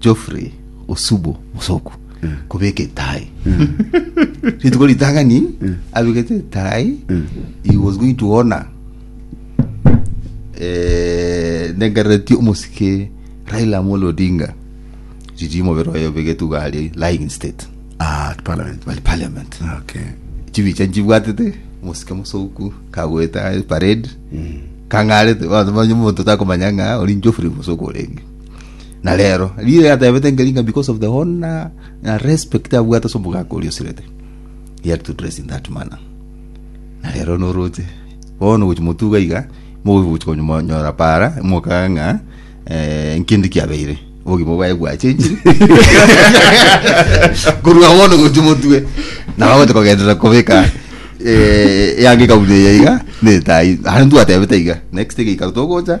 Geoffrey Osubo Musoku kobeka etai. Rituko ritang'ani abegete etai he was going to honor eh, nengarereti omosike Raila Amolo Odinga riri mobere oyo obegete uga aria lying in state Ah, at parliament. bali parliament Okay. chibicha nchibwatete mosike mosoku kagweta parade kang'arete bantu banye omonto takomanya ng'a ori Geoffrey Musoku orenge na rero riria yatebete nkeri ng'a because of the honor na respect abwate ase omogaka oria osirete he had to dress in that manner na rero noroche bono gochi motuga iga mogochi konyora para mokaga ng'a eh, nkindi kiabeire obogima bwaye bwachenchire korwa bono gochi motue nabagote kogenderera kobeka eh, yange kabune iga netai arantu atebete iga next thing ikaruta ogocha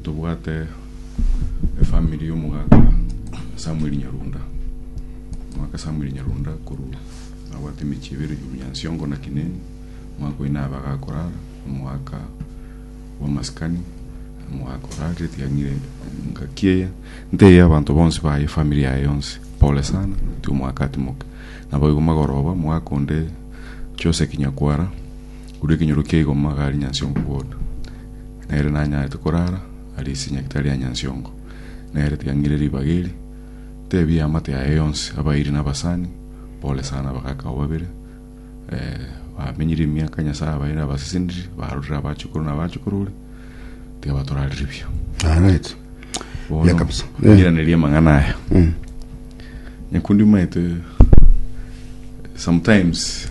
Ntobwate efamiri y'omogaka Samuel Nyarunda. Omogaka Samuel Nyarunda korwa nabwate emechie ebere iguru ya Nsiongo na Kineni, omogaka oye nabe agakorara omogaka bw'amasikani, omogaka orarire etiang'ire engaki eye, nteire abanto bonsi baye efamiri yaye yonsi pole sana, ti omogaka atimoke. Naboigo magoroba omogaka onde Jose Kinyakwara. Korwa ekenyoro kia igoma iga aria nyansiongo kodu, na ere nanyarete korara aria ase nyagetari ya nyansiongo, na ere tiang'ire ribaga eri. Tebia amate aye yonsi abairi na abasani bore sana abagaka abo babere, ee, bamenyire emiaka Nyasae abaire abasesenire, barorire abachukuru na abachukuru ore, tiga batorarire buya. Alright. Bono, Buya kabisa. Eh. ngiraneria amang'ana aya. Mm. Nyakundi omaete sometimes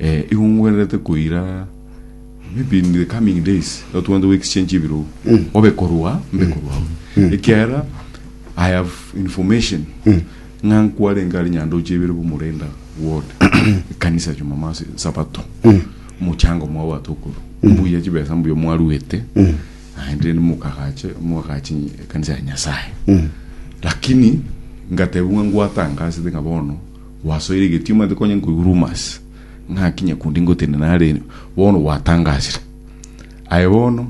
Eh, igo ngwenerete koira maybe in the coming days igo twande go exchange ebirogo obe korwa mbe korwa abwo ekiagera i have information ng'a nkwarenge are nyandoche ibere bomorenda ward ekanisa jumamosi sabato mochango mwabwate okoru mbuya chibesa mbuya mwaruete naende mokagache mwagache ekanisa ya nyasaye lakini ngatebwa ngwatangasete ng'a bono Gwasoire egetioma ande konya nkoigwa rumors ng'aki nyakundi ngotenena nare bono gwatangasire. Aye bono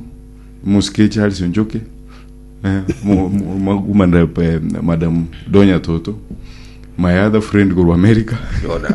omosike eche Alice Onchoke eh, mo- mo- makumana eh, madam Donya Toto my other friend korwa America Yona.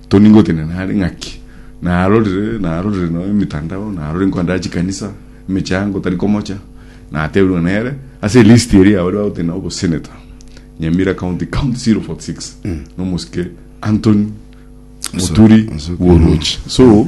Tony ngotini na are ng'aki, narorire, narorire nonya emitandao, narorire nkoenda chikanisa, emechango tari komocha, natebirwe nere, ase elist eria yabo riba gotini na obosenator, Nyamira County, County 046, nomosike Anthony Muturi Bworochi. So,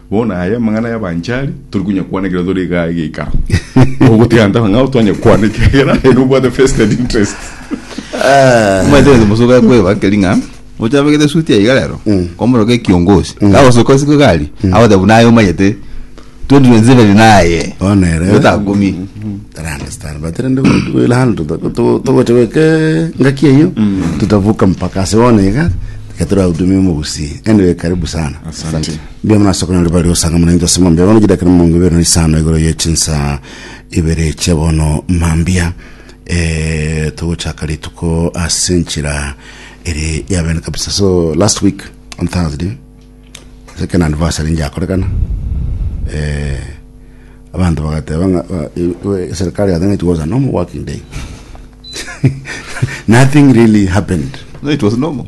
Bono aya amang'ana y'abanchari tori konyakwana ekero tore igaa egeikaro. Ogotiga ntaba ng'a twanyakwana ekiagera aye nobwate vested interest. Omanyete gento mosuka ekweba keri ng'a oche abegete suti aiga rero komoroka ekiongozi kagosoka osiko egari agote buna aye omanyete 2027 naye Bono ere. yotakumia I understand but rende we will handle to- to- togocha goika ngaki eyo tutavuka mpaka ase bono iga tiga torahudumia omogusii anyway karibu sana Asante. Mbuya mono ase okonyora bare osanga muna inche ase mambia bono chidakika na miongo ibere na isano igoro ye chinsaa ibere chia bono mambia eh, togochaka rituko ase enchera ere ya bene kabisa so last week on thursday ase ekero anniversary njakorekana eh, abanto bagateba ng'a ba- e- e- serikali i think it was a normal working day nothing really happened No, it was normal.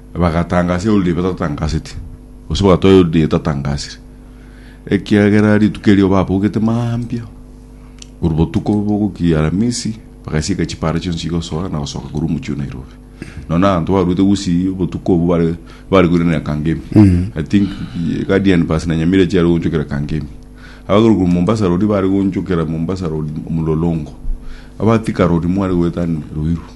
bagatangasia eriodo batatangaseti, gose bagatoa eriodo etatangasire, ekiagera rituko erio babaugete mambia korwa botuko bogokiia Aramisi, bagasieka chipara chionsi chigosoa na gosoka korwa omochie o Nairobi. Nonya abanto baruete gusii obotuko obwo bare barekoiranera Kangemi. I think eh, Guardian bus na Nyamira chiare gochokera Kangemi. Abagorwa korwa Mombasa Road bare gochokera Mombasa Road Mlolongo. Abatika Road mware goetania Ruiru.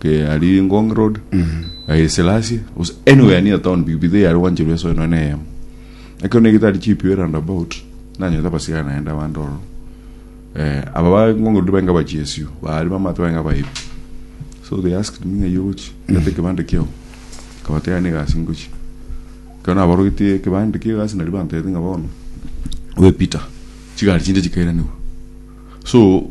ke ari ngong road eh, selasi gose anywhere near town pikipiki eye yari gwancherwa esoe noe neyemo ekero negete ari chipio roundabout nanyete abasigari naende abande ororo eh, aba ba ngong road bainga bachiesio bari bamato bainga baibi so they asked me ng'ai ogochi gete ekebande kiao kabate yane egasi ngochi ekero nabarogetie ekebande kia egasi nari bantebete ng'a bono oye peter chigari chinde chikairanigwe so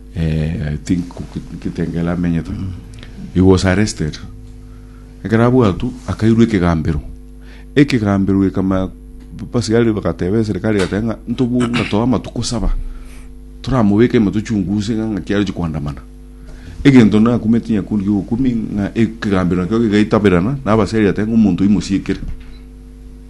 I think Kitengela amenyete. He was arrested. Ekero abwatwa akairwa ekegambero. Ekegambero gekama basigari bagateba eserikari egateba ng'a ntobwo ng'a toa amatuko saba toramobeke ime tochunguse ng'a ng'aki aroche koandamana. Egento nakumeti nyakundi gi'obokumia ng'a ekegambero nakio kegaitabirana na abasiari bagateba ng'a omonto oyio mosie ekere.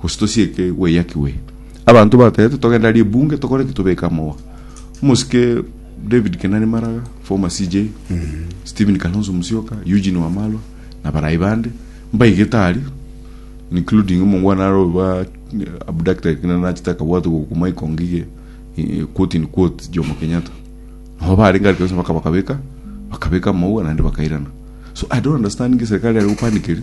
Gose tosieke gweyaki gwe. Abanto batebete togenda ribunge tokore ki tobeke amogwa. Omosike David Kenani Maraga, former CJ, Stephen Kalonzo Musyoka, Eugene Wamalwa na barai bande mbaigete aria including omongwana are oba abducted kina nachete akabwatwa go kuma ikongo iga eh, quote in quote Jomo Kenyatta. Nabo barenge aria kabisa mpaka bakabeka bakabeka amogwa naende bakairana. So I don't understand nki serikali are gopanikeri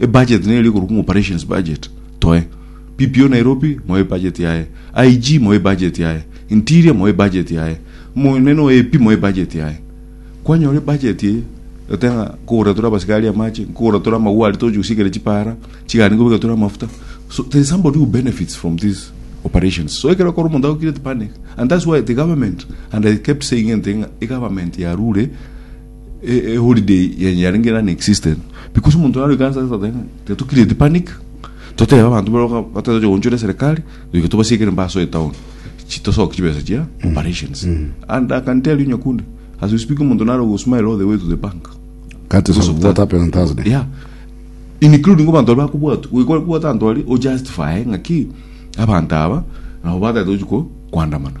E budget nero eri korokwa ng'a operations budget toe. PPO Nairobi moe ebudget yaye. IG moe ebudget yaye. Interior moe ebudget yaye. Omonene o AP moe ebudget yaye. Kwanyora ebudget eye oteba ng'a nkogorera tore abasikari amache, nkogorera tore amagwa aria togochia gosiekera chipara, chigari nkobeka tore amafuta. So there is somebody who benefits from these operations. So ekero okora omonto ago create panic and that's why the government and I kept saying anything ng'a egovernment yarure a, a holiday yenye yarenge non existent because omonto naro ikansa ase toteba tiga to create panic totebe abanto baro ka- batari toche gochora eserekari toike tobasiekere mbaso etown chi tosoke chibesa chia operations and i can tell you nyakundi as we speak omonto naro go smile all the way to the bank That is Because of what that. happened on Thursday. yeah including abanto bari bakobwatwa goika kobwata abanto bari o justify ng'aki abanto aba nabo batagete gochia ko- koandamana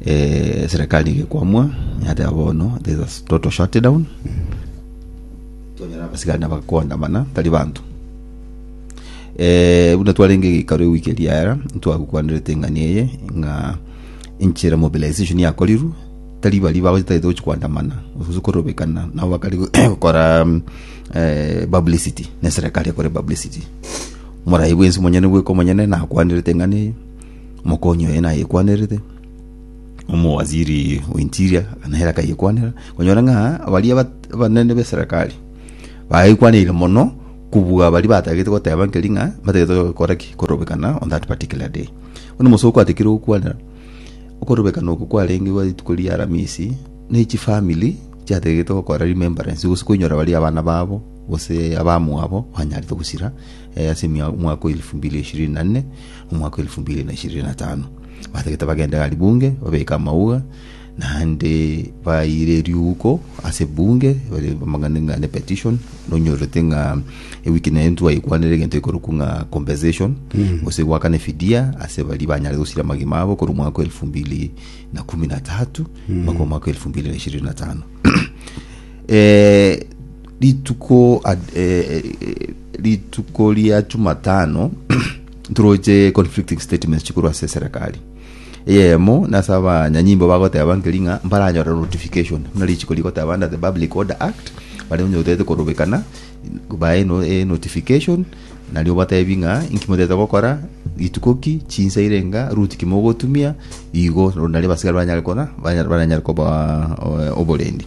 Eserekari nigo ekwamwa, yateba bono there is a total shutdown, twanyora abasigari nabo bagokoandamana, tari banto. Eh, buna twarenge geikaro ewiki eria yaera, ntwagokwanerete eng'ani eye ng'a enchera mobilization yakorirwe, tari baria bagochi tagete gochi koandamana, gose korobekana nabo bakare gokora mm, eh, publicity, neserekari ekore publicity. Morai bwensi monyene bweka omonyene nakwanerete eng'ani eye, Omokonyi oye nayekwanerete, omowaziri o interior na ere akayekwanera, konyora ng'a baria abat- abanene b'eserekari baekwaneire mono kobua baria batagete goteba nkeri ng'a batagete gokora ki korobekana on that particular day. Bono omosoo kwatikire gokwanera, okorobekana oko kwarenge gwa rituko ria aramisi, na echi family chiategete gokora remembrance gose koinyora baria abana babo gose abamwabo banyarete gosira ase emia- omwaka o elfu mbili ishirini na nne. omwaka o elifu mbili na ishirini na tano, batagete bagende gari bunge babeke amauga, naende baire eriuhuko ase bunge bare bamang'ane ng'a ne petition nonyorete ng'a ewiki naye ntwaigwanere egento ekorokwa ng'a compensation gose gwakana efidia ase baria banyare gosira amagima abo korwa omwaka o elifu mbili na kumi na tatu mpaka omwaka o elifu mbili na ishirini na tano Eh, rituko ad- eh, eh, rituko ria chumatano Ntoroche conflicting statements chikorwa ase eserekari eyemo na ase abanyanyimbo bagoteba nkeri ng'a mbaranyore notification buna richiko rigoteba under the Public Order Act baria onye otete korobekana bae no, eh, notification nario batebi ng'a inki motete gokora rituko ki chinsa ire nga route ki mogotumia igo nario abasigari baranyare kona baranyare koba eh, oborendi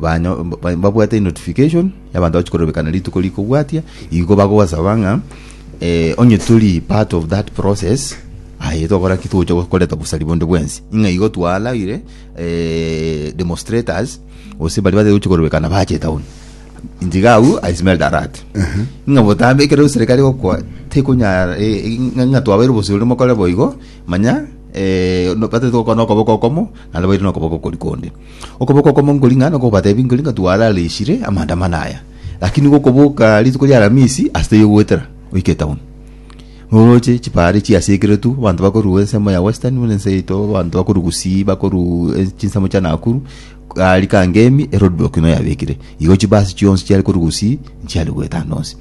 banyo- ba- babwate enotification y'abanto bachi korobekana rituko rikobwatia igo bagosaba ng'a eh, onye tori part of that process aye togora ki togocha go- koreta bosari bonde bwensi ng'a igo twaraire eh, demonstrators gose baria batari gochi korobekana bache town ntiga awu i smelled a rat ng'a botambe ekero eserikari egokwa tekonyara eh, eh, ng'a ng'a twabaire oboseri oria mokore boigo manya eh, no- batari gokora nokoboko okomo naende baire nokoboko okori konde Okoboko okomo nkori ng'a nokobatebi nkori ng'a twarareshire amaandamano aya, lakini gokoboka rituko ri'Alamisi ase taiyo goetera oike etown. Noroche chibare chiasekeretu, abanto bakorua ensemo ya Western buna ense yaito, abanto bakorwa Gusii, bakorwa e- chinsemo chia Nakuru, gari Kangemi eroad block nigo yabekire. Igo chibasi chionsi chiare korwa Gusii nchiare goeta ande onsi.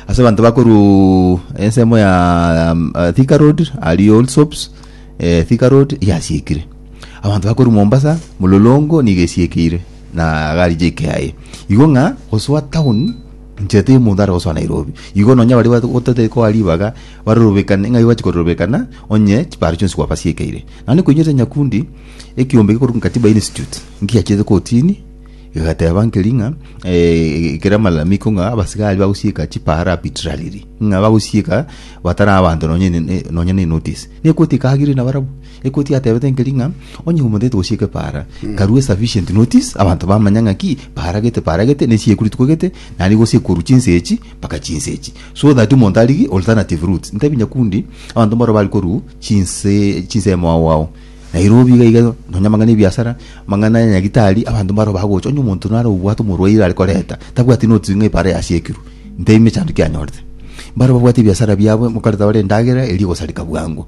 Ase abanto bakorwa ensemo ya Thika road aria Allsops, eh, Thika road yasiekire. Abanto bakorwa Mombasa, Mulolongo nigo esiekeire na gari jike aye. Igo ng'a gosoa town inche tiri omonto are gosoa Nairobi. Igo nonya baria batu- gotete koa ribaga barorobekane ng'ai bachi kororobekana onye chiparo chionsi gwabasiekeire. Naende koinyete Nyakundi ekiombe gekorokwa Katiba Institute nkiachete kotini egateba nkeri ng'a eh, ekere malalamiko ng'a abasigari bagosieka chiparo arbitrarily ng'a bagosieka batari abanto nonye ne- ne- nonye ne notice. Nekoti ekagire nabarabwo. Ekoti yatebete nkeri ng'a onye omotete gose ekepaara karue sufficient notice abanto bamanya ng'a ki paaragete paaragete ne chiekuri tikwegete naende gose ekoru chinse echi mpaka chinse echi so that omonto arigie alternative routes ntebi nyakundi abanto mbaro bari koru chinse chinse ya mwao wao Nairobi iga iga nonya amang'ana ya ebiasara amang'ana ya nyagitari abanto mbaro bagocha onye omonto naro obwate omorwaire are koreta tabwati notice ng'a epaara yasiekirwe ntebi mechando kianyorete mbaro babwate ebiasara biabo mokareta bare endagera eria egosareka bwango.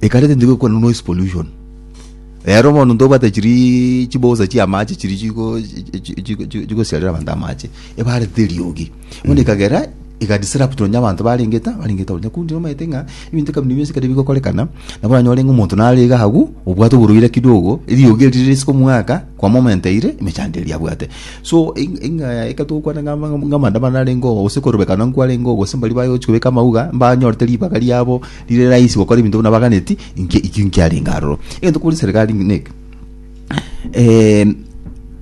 Ekareti ndigwe ekwana noise pollution. Rero bono ntobwate chiri chibosa chia amache chiri chigo chi- chi- chi- chigosiarera abanto amache ebarete eriogi bono ekagera ega disrupt nonya abanto barenge ta barenge town na kundi nomaete ng'a ebinto kabinde bionsi ekero bigokorekana nabo oranyore ng'a omonto nare iga agwo obwate oborwaire kidogo eriogi eri rire ase komwaka kwa moment eyire emechando eria abwate so eng- eng'a eke togokwana ng'a ama- ng'a amaandamano narengeo gose korobekana nkwarengeo gose mbaria baye gochi kobeka amauga mbanyorete ribaga riabo. Riire rahisi gokora ebinto buna baganeti, inki ekio nkiarenge aroro. Egento kobua riserikari neke,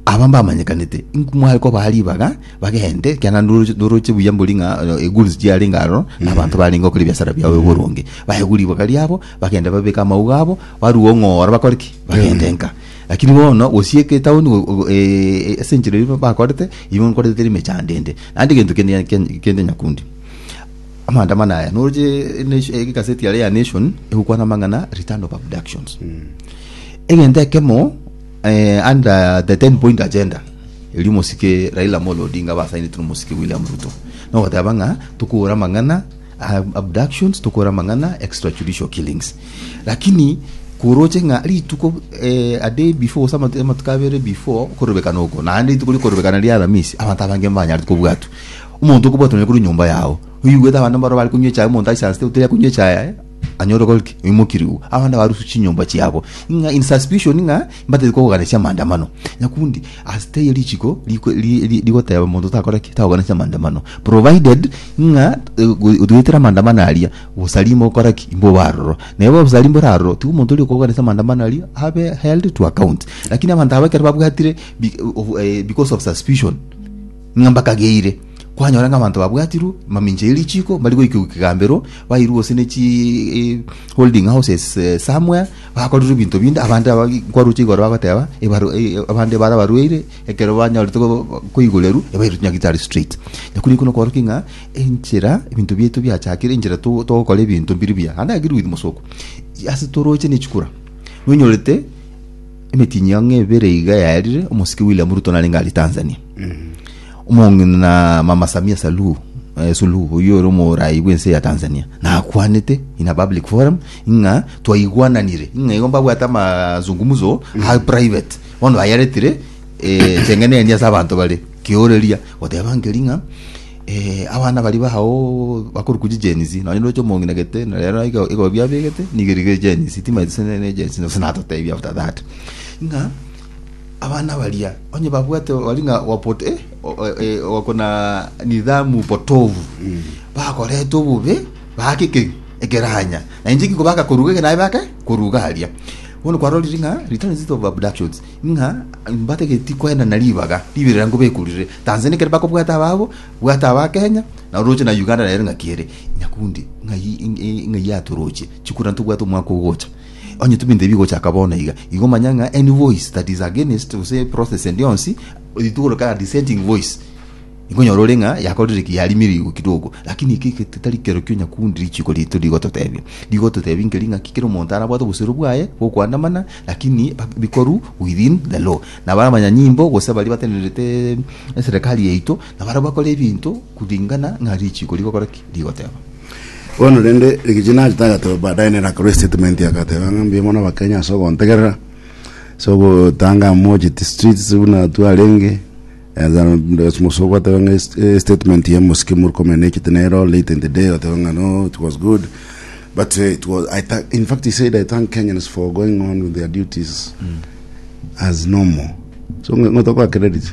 aba mbamanyekanete, inku mware kobaa ribaga bagende, ekiagera ndoro- ndoroche buya mbori ng'a eh, egoods chiarenge aroro, na abanto barenge gokora ebiasara biabo oboronge. Baegwe ribaga riabo, bagende babeke amauga abo, barue ong'ora bakore ki? Bagende nka. Lakini bono gosieka etaoni go- go- eh, eh, ase enchera eyio bakorete, eyio nkorete teri emechando ende. Naende egento kende ken- kende nyakundi. Amaandamano aya noroche Nation- eh, egaseti yare ya nation egokwana amang'ana return of abductions egento ekemo eh, under the 10 point agenda eri omosike raila amolo odinga basainete nomosike william ruto nogoteba ng'a tokora amang'ana ah, abductions tokora amang'ana extrajudicial killings lakini koroche ng'a rituko eh, a day before gose amatu- amatuko abere before korobekana oko naende rituko rikorobekana ria aramisi abanto abange mbanyarete kobwatwa Omonto okobwatwa nere korwa enyomba yao, oigwete abanto mbaro bare konywa echae, omonto aise asete otari akonywa echae yaye, anyore okoreki? Oimokirigwe. Abande barusu chinyomba chiabo, ng'a in suspicion ng'a mbatari kogoganesia amaandamano. Nyakundi ase taiyo richiko riko ri ri rigoteba omonto takoreki? Takoganesia amaandamano. Provided ng'a otwetire amaandamano aria, bosari mbokoreki? Mbobe aroro. Na ebe obosari mbore aroro, tiga omonto oria okogoganesia amaandamano aria abe held to account. Lakini abanto aba ekero babwatire bi- of- eh, because of suspicion, Ng'a mbakageire, kwanyora ng'a abanto babwatirwe mamincha ye richiko mbari goikigwa kegambero, bairwe gose ne chi holding houses somewhere, bakorirwe ebinto binde, abande aba nkwaroche igoro bagoteba ebaro abande bare abarwaire ekero banyorete koigurerwa ebairwe chinyagitari straight. Nakwo rikwe nokworokia ng'a enchera ebinto biaito biachakire, enchera to togokora ebinto mbiri buya. Naende I agree with Mosoko, ase toroche ne chikura nonyorete emetinyia ng'a ebere iga yaerire omosike William Ruto narenge aria Tanzania, omong'ina mama samia saluhu eh, suluhu oyo ore omorayi bw'ense ya tanzania nakwanete in a public forum ng'a twaigwananire ng'a igo mbabwate amazungumuzo a private bono ayaretire eh, chengeneni ase abanto bare kioreria goteba nkeri ng'a eh, abana bari bao bakori kuji jenisi nonye roche omong'ina gete na rero igo igo biabegete nigo rigere jenisi timaeti sene ne jenisi nose natotebia after that ng'a Abana baria onye babwate bari ng'a wapot eh, o- o- eh, wako na nidhamu potovu bakorete obobe baaka eke- ekeranya na inche ngiko baka koruga eke naye baka koruga aria bono kwarorire ng'a return visit of abductions ng'a mbatageti kwenda na ribaga ribirira ngobekurire tanzania ekero bakobwata ababo bwata aba kenya na oroche na uganda nere ng'a kiere nyakundi ng'ai ng'ai atoroche chikura ntobwate omwaka ogocha Onye tobinto ebi gochaka bono iga, igo manya ng'a any voice that is against gose process endi yonsi, eri togorokana dissenting voice, ikonyora ore ng'a yakorire ki, yarimire igwe kidogo. Lakini eke eke titari kerokio nyakundi richiko rito rigototebia. Rigototebia nkeri ng'a ki kera omonto arabwate obosero bwaye bw'okoandamana, lakini bikoru within the law. Nabo abanyanyimbo gose baria batenerete eserekari yaito, nabaria bakora ebinto, Kuringana ng'a richiiko rigokora ki? Rigoteba. Bono rende rigichia nache tagateba baadaye nere akarwa estatement agateba ng'a mbuya mono abakenya ase ogontegerera ase ogotanga amocheti streets buna twarenge eh, then as musa ogoteba ng'a est- eh, statement ya mosike muri komenya nechete nero late in the day oteba ng'a no it was good but eh, it was, I thank, in fact he said I thank Kenyans for going on with their duties as normal so ng'o- ng'o tokoa credit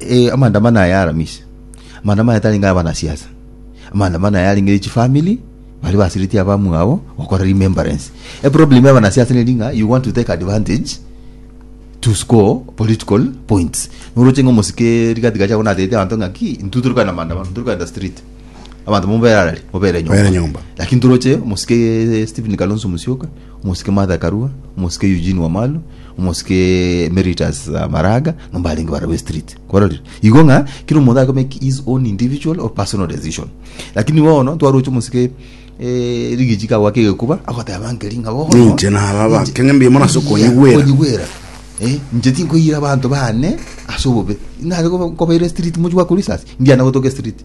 eh, amandamano aya aramisi amandamano aya tarenge abanasiasa amandamano aya arenge chifamili bari basiriti abamwabo gokora remembrance eproblem ya abanasiasa neri ng'a you want to take advantage to score political points noroche ng'a omosike rigati gacha abona ateete abanto ng'a ki intu torikogenda maandamano torikogenda street abanto mobere arari mobere nyomba Mobere nyomba. lakini toroche omosike stephen kalonzo musyoka Omosike Martha Karua, omosike Eugene Wamalu, omosike Emeritus Maraga, ng'a mbarenge barabwo estriti. Kwarorire? Igo ng'a kera omonto aye komake his own individual or personal decision. Lakini bono twaroche omosike eh, Rigiji kagoaka egekuba agoteba nkeri ng'a bono Ninche naba ba- Ninche- keng'e mbiamore ase okonyigwera. okonyigwera Eh, inche tinkoiyera abanto bane ase obobe nare koba- kobaira estriti mochie gwakora risasi ndiana gotoka estriti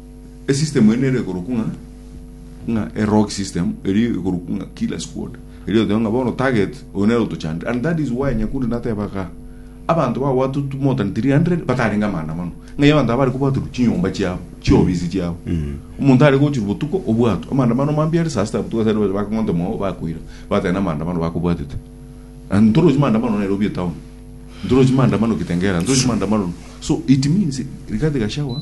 esystem ene ere igoro kung'a ng'a erog system eri igoro kung'a kila squad eri oteba ng'a bono target oyo nere otochandire and that is why nyakundi nateba ga abanto bagwatu more than 300 batarenge amaandamano ng'ai abanto aba bari kobwaterwa chinyomba chiabo chiofisi chiabo omonto are gochirwa botuko obwatwe amaandamano mambia ere saa sita botuko ase aria bakong'ota omwao bakoira bateba namaandamano bakobwatete and ntorochi maandamano nairobi etown ntorochi maandamano kitengela ntorochi maandamano so it means rigathi gachagua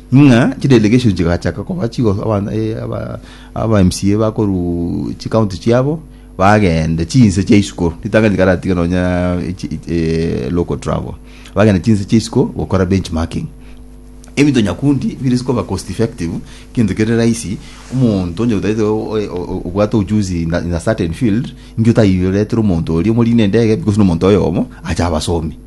Ng'a chidelegations chigachaka koba chigo aba eh, aba aba MCA bakoru chicounty chiabo bagende chinse chia isiko ritang'ani rikaratiga nonya echi- echi- eh, local travel bagende chinse chia isiko gokora benchmarking ebinto nyakundi bire sikoba cost effective kintu kere rahisi omonto onye otaete o- o- o- obwate ujuzi in a- in a certain field inki otayiretire omonto oria omorine endege because nomonto oyomo acha abasomi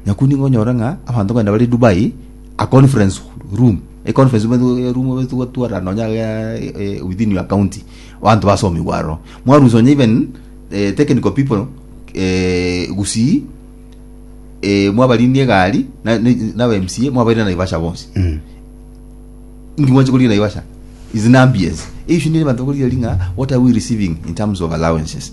Nyaku nigo onyore ng'a abanto kogenda bare Dubai a conference room, e conference room eto- e- room eto gotwara nonye agaa e- e- within your county, abanto basomigwe aroro. Mwarusia onye even eh, technical people Gusii eh, mwabarindie egari na- ne- na aba MCA mwabaire Naivasha bonsi. Mm. Inki mwanche korigia Naivasha? Is in ambience. Issue nere abanto bakorigia eri ng'a what are we receiving in terms of allowances?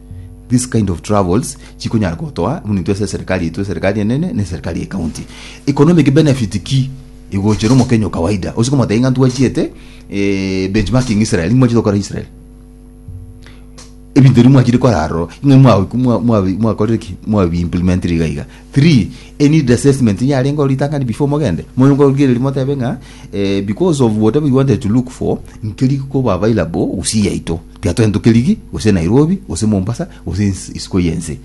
This kind of travels chikonyara gotoa buna intwe ase eserikari yaitwe, eserikari enene na eserikari ya ekaunti. Economic benefit ki igochera omokenya o kawaida? Ose komotebia ng'a ntwachiete eh, benchmarking Israel, niki mwachete gokora Israel? ebinto ebi mwachire kora aroro ng'a mwa- mwa- mwa- mwakorire ki mwabiimplementire iga iga three a need assessment yarenge ritang'ani before mogende moyo nkorigereria motebe ng'a eh, because of whatever you wanted to look for nkeri koba available gusii yaito Tiga togende Tokerigi, gose Nairobi, gose Mombasa, gose ense isiko y'ense.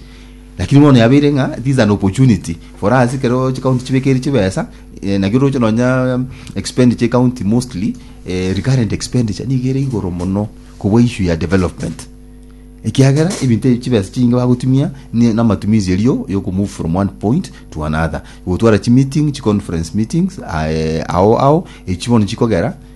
Lakini bono yabeire ng'a it is an opportunity for us ekero chicounty chibekeri chibesa, eh, naki oroche nonya expenditure y'ecounty mostly, eh, recurrent expenditure nigo ere igoro mono kobua issue ya development. Ekiagera ebinto ebi chibesa chinge bagotumia ne- namatumizi erio yoko move from one point to another. Gotwara chimeeting, chiconference meetings, aye, ao ao, echi bono chikogera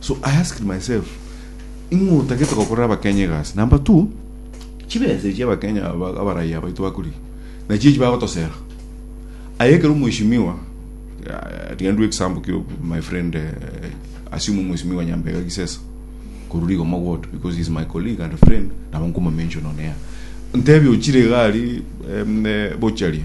So I asked myself, ing'o otagete gokorera abakenya egasi? Number two, chibesa echi abakenya aba- abaraiya baito bakorigia, nachio echi bagotosera. Aye ekero omweshimiwa, eh, tiga ndue example kio my friend, eh, assume omweshimiwa Nyambega Gisesa, korwa Rigoma Ward, because he is my colleague and friend, nabo nkoma mention on air. Ntebie ochire iga aria, em, eh, bocharia,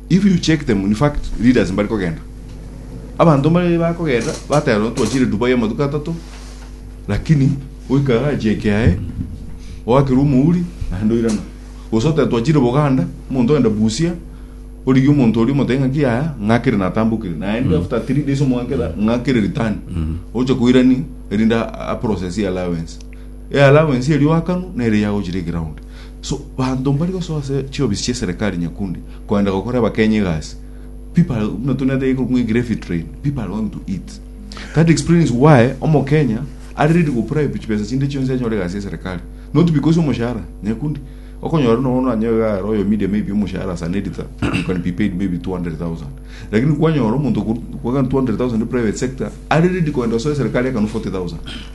If you check them in fact leaders mbari kogenda abanto mbari bakogenda bateba nonya twachire Dubai amatuko atato lakini oika garage eye kiaye oakire omouri naende oirana gose oteba twachire Buganda omonto ogenda Busia origie omonto oria omotebie ng'aki yaya ng'akire natambokire naende after 3 days omwanke ra- ng'akire return oche koirani erinde a- a process ye allowance e allowance eria oakanwa nere yagochire eground So banto mbari gosoa ase chiofisi chi'eserekari nyakundi kogenda gokora abakenyi egasi, people are, buna tore naende iko ng'wegire heavy train, people are going to eat. That explains why omokenya are ready gopribe chibesa chinde chionsi anyore egasi y'eserekari. Not because omoshahara, nyakundi. Okonyora nonya bono anyoe iga aro oyo media maybe omoshahara as an editor, you can be paid maybe 200,000. Lakini kwanyora omonto okoru- kwagana 200,000 private sector, are ready kogenda gosoa eserekari ekanu 40,000.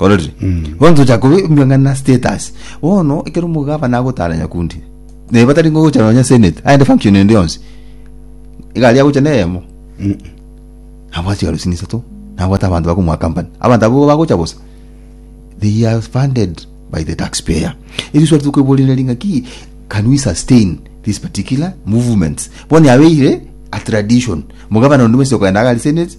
ororire bonto cha kubimbia ng'ana status bono ekero omogabana agotara nyakundi naye batari ngogocha nonya senate aende function ende yonsi egari agocha neyemo abwate chigaro chine isato nabwate abanto bakomoaccompany abanto abwo bagocha bosa they are funded by the tax payer erio swali tokoiboria ng'aki can we sustain this particular movements bono yabeire a tradition omogabana onde bwensi okogenda iga aria senate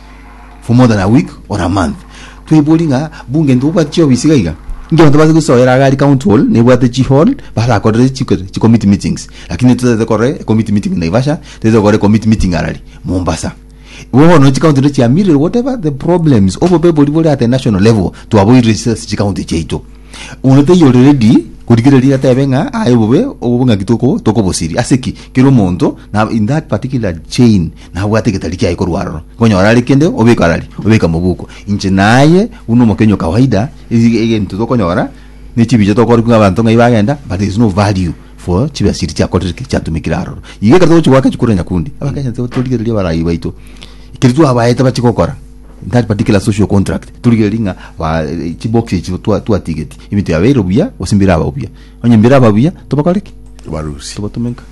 for more than a week or a month tweibori ng'a bunge nto obwate chiofisi iga iga inki abanto base gosoera agari county hall nebwate chihall barakorere chiko chicommittee meetings lakini totagete korora ecommittee meeting naivasha totagete korora ecommittee meeting arari mombasa bono nonya chicounty indo chiamirire whatever the problems obobebori bore at a national level twaboirire ase ase chicounty chiaito oyo taiyo ready korigereria atebe ng'a aye bobe obong'aki toko tokobosiria ase ki kera omonto na in that particular chain nabwate egetari kiaye korwa aroro, konyora are kende obeka arari, obeka mobuko. Inche naye buna omokenya o kawaida, ege- egento tokonyora ne chibicha tokore buna abanto ng'ai bagenda, but there is no value for chibesa chiria chiakorire ki? chiatumekire aroro. Iga ekero togochi goaka chikura nyakundi, abakenya to- torigereria abarai baito, ekeri twabaete bache gokora in that particular social contract, torigereria ng'a ba eh, chibox echi twa- twatigeti, ebinto yabeire buya, gose mbiraba buya. Onye mbiraba buya, tobakore ki? Tobarusie. Tobatumeka.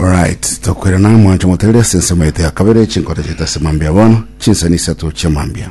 Alright, tokwirana mwancho motegeria ase ensemo yaito ya kabere chinkoro chiaito ase mambia bono, chinsemo isato chia mambia.